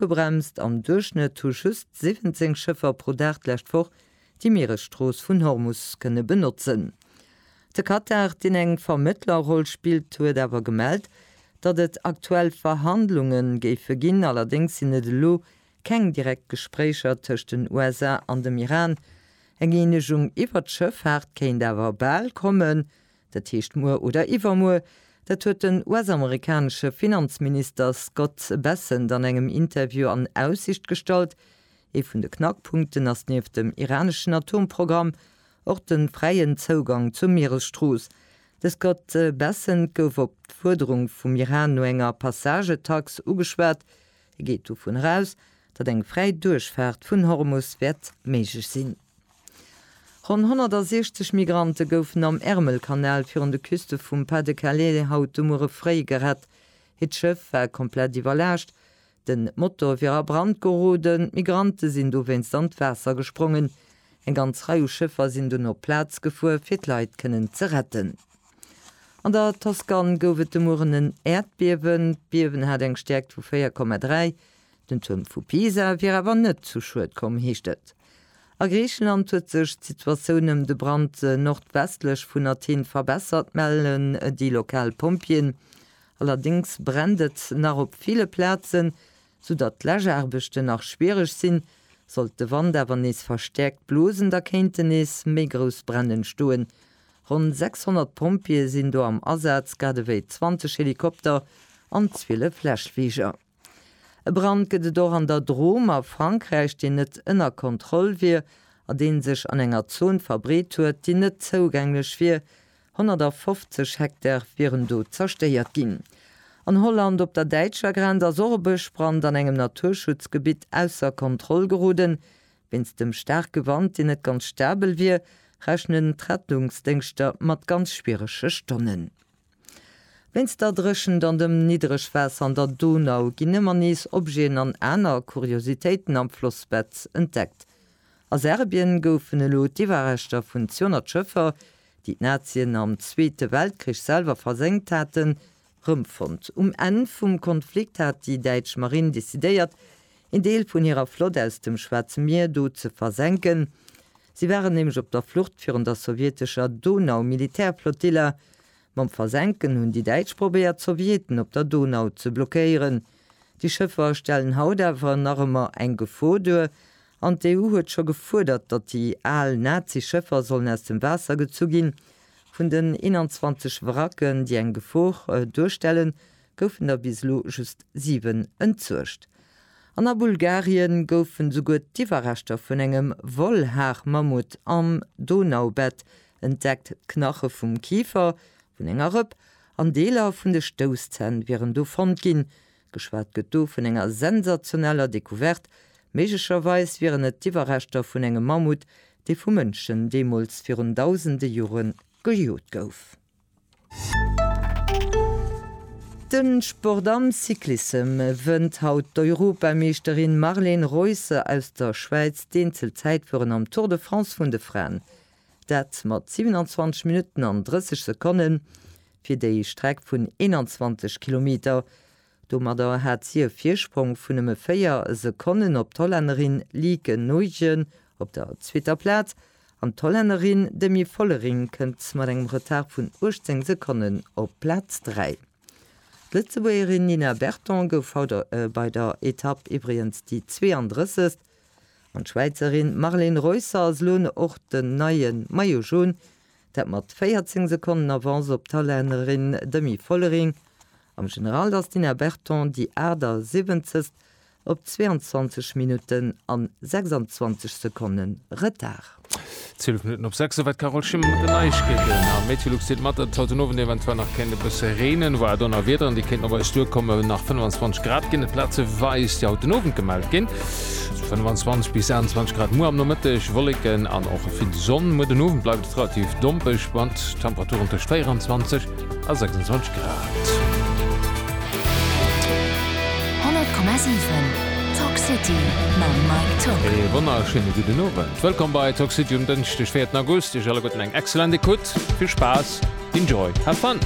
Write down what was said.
Ofgebremst am Duerchschnëtt hu just 17 Schëffer pro Dag d'lescht Woch déi Mieresstrooss vun Hormus kënne benotzen. De Katar, deen eng Vermëttlerroll spillt, huet awer gemellt, datt et aktuell Verhandlunge géife ginn, allerdéngs sinn et elo keng direkt Gespréicher tëscht den USA an dem Iran. Eng Eenegung iwwer d'Schëffaart kéint awer bal kommen, Dat heescht muer oder iwwermuer, dat huet den US-amerikanesche Finanzminister Scott Bessent an engem Interview an Aussicht gestallt. Ee vun de Knackpunkten ass nieft dem iraneschen Atomprogramm och de fräien Zougang zur Mieresstrooss. De Scott Bessent gouf op d'Fuerderung vum Iran no enger Passagetax ugeschwat, Hie geet dovun eraus, datt eng fräi Duerchfaart vun Hormus wäert méiglech sinn. Ronn 160 Migrante goufen am Ärmelkanal virun de Küste vum Pas-de-Calais haut de Muere fréi gerett. Hiert Schëff war komplett iwwerlaascht, den Motor wier a Brand geroden. D'Migrante sinn dowéinst an d'Waasser gesprongen. Eng ganz Rei u Schëffer sinn dunn op d'Plaz gefuer, fir d'Leit kënnen ze retten. An der Toskan gouf et de Mueren en Äerdbiewen. D'Biewen hat eng Stäerkt vu 4,3. Den Tuerm vu Pisa wier awer net zu Schued komm, heescht et. A Griicheland huet sech d'Situatioun ëm de Brand nordwestlech vun Athen verbessert, mellen déi lokal Pompjeeën. Allerdéngs brennt et nach op ville Plazen. Vu datt d'Läschaarbechten nach schwiereg sinn, sollt de Wand awer nees verstäerkt blosen, da kéinten nees méi grouss Bränn entstoen. Ronn 600 Pompjeeë sinn do am Asaz, grad ewéi 20 Helikopter an 12 Läschfliger. E Brand gëtt et och an der Drôme a Frankräich, deen net ënner Kontroll wier a deen sech an enger Zon verbreet huet, déi net zougänglech wier 150 Hektar wieren do zerstéiert ginn. An Holland op der däitscher Grenz ass och e Bëschbrand an engem Naturschutzgebitt ausser Kontroll geroden. Wéinst dem staarke Wand, deen net ganz stabel wier, rechnen d'Rettungsdéngschter mat ganz schwierege Stonnen. Wéinst der Dréchent an dem Niddregwaasser an der Donau ginn ëmmer nees Objeten an aner Kuriositéiten am Flossbett entdeckt. A Serbien goufen elo d'Iwwerreschter vun 200 Schëffer, déi d'Nazien am Zweete Weltkrich selwer versenkt haten, rëmfonnt. Um Enn vum Konflikt hat déi däitsch Marinn decidéiert, een Deel vun hirer Flott aus dem Schwaarze Mier do ze versenken. Si waren nämlech op der Flucht virun der sowjetescher Donau-Militärflottille. Mam Versenken hunn déi Däitsch probéiert, d'Sowjeten op der Donau ze blockéieren. Déi Schëffer stellen haut awer nach ëmmer eng Gefor duer An d'EU huet scho gefuerdert, datt déi al Nazi-Schëffer sollen aus dem Waasser gezu ginn. Vun den 21 Wracken, déi eng Gefor duerstellen, goufen der bis elo just siwen entsuergt. An a Bulgarien goufen souguer d'Iwwerreschter vun engem Wollhaarmammut am Donaubett entdeckt. D'Knache vum Kifer vun enger Rëpp an Deeler vun de Stousszänn wieren do fonnt ginn. Geschwat gëtt do vun enger sensationeller Decouverte, méiglecherweis wieren et d'Iwwerreschter vun engem Mammut, dee vu Mënschen deemools virun dausende Jore gejot gouf. De Sport am Cyclissem wënnt haut d'Europameeschterin Marlen Reusser aus der Schwäiz d'Eenzelzäitfueren am Tour de France vun de Fraen. Dat mat 27 Minutten an 30 Sekonnen. fir déi Streck vun 21 Kilometer. Domadder hat si e Virsprong vun nëmme 4 Sekonnen op d'Hollännerin Lieke Noegen op der zweeter Plaz an d'Hollännerin Demi Vollering kënnt mat engem Retard vun 18 Sekonnen op Plaz 3. D'Lëtzebuergerin Nina Berton gouf haut bei der Etapp iwwregens déi 32. An d'Schwäizerin Marlen Reusser ass elo och den neie Maillot Jaune dat mat 14 Sekonnen Avance op d'Hollännerin Demi Vollering. Am General ass d'Ina Berton déi 78. op 22 Minutten an 26 Sekonne Retard. 12 Minutten op 6 sou war d'Carole Schimmer mat den Neiegkeeten. A Meteolux deelt mat, datt et haut den Owend eventuell nach kéint e bësse reenen, wouer Donnerwiederen, déi kéinten op eis duerkommen, nach 25 Grad ginn. Et plazeweis, déi haut den Owend gemellt ginn. Sou 25 bis 28 Grad muer am Nomëtteg, Wolleken an och vill Sonn. Muer den Owend bleift et relativ dompeg mat Temperaturen tëscht 24 a 26 Grad. 100,7 Talk City mam Mike Tock. Ee wonnerschéine gudden Owend. Wëllkomm bei Talk City um Dënschdeg, 4 August. Iech alleguerten eng excellent Ecoute. Vill Spaass, enjoy, have fun!